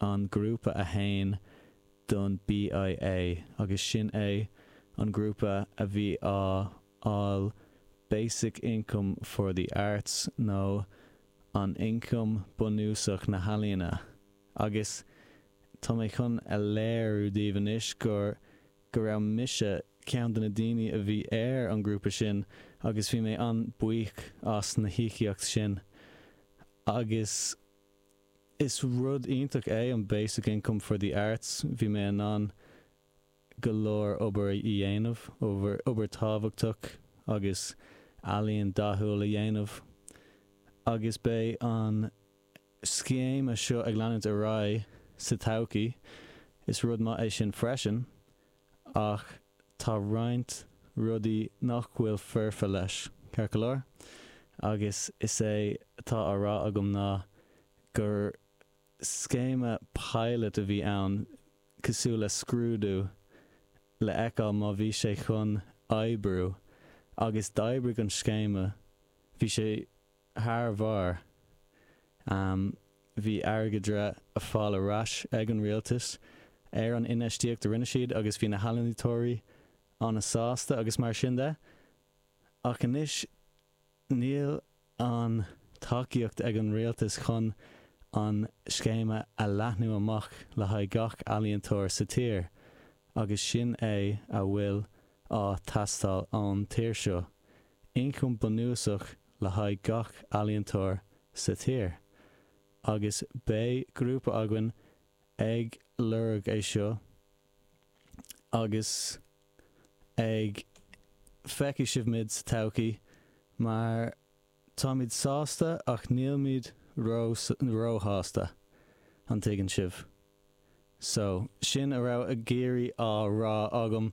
an grúpa atá ann don BIA agus sin é an grúpa a bhí á fháil Basic Income for the Arts nó an Ioncam Bunúsach na hEalaíona agus tá mé chun a léiriú daoibh anois gur go raibh mise ceann de na daoine a bhí ar an grúpa sin agus bhí mé an-buíoch as na híocaíocht sin agus. Is rud iontach é an Basic Income for the Arts. Bhí mé in ann go leor obair a dhéanamh, obair tábhachtach agus ealaíon dathúil a dhéanamh agus beidh an scéime seo ag leanúint ar aghaidh sa todhchaí. Is rud maith é sin freisin. ach tá roinnt rudaí nach bhfuil foirfe leis, ceart go leor, agus is é atá á rá agam ná gur scéime pilot a bhí ann, cosúil le scrúdú, le fheiceáil má bhí sé chun oibriú, agus d'oibrigh an scéime, bhí sé Thar barr. Bhí airgead á fháil ar ais ag an rialtas ar an infheistíocht a rinne siad agus bhí na healaíontóirí an-sásta agus mar sin de. Ach anois níl an tacaíocht ag an rialtas chun an scéime a leathnú amach le haghaidh gach ealaíontóir sa tír agus sin é a bhfuil á teastáil ón tír seo, ioncam bunúsach le haghaidh gach ealaíontóir sa tír agus beidh grúpa againn ag lorg é seo agus ag feicfidh sibh muid sa todhchaí mar táimid sásta ach nílimid ró ró-shásta an dtuigeann sibh? So sin a raibh ag iarraidh á rá agam.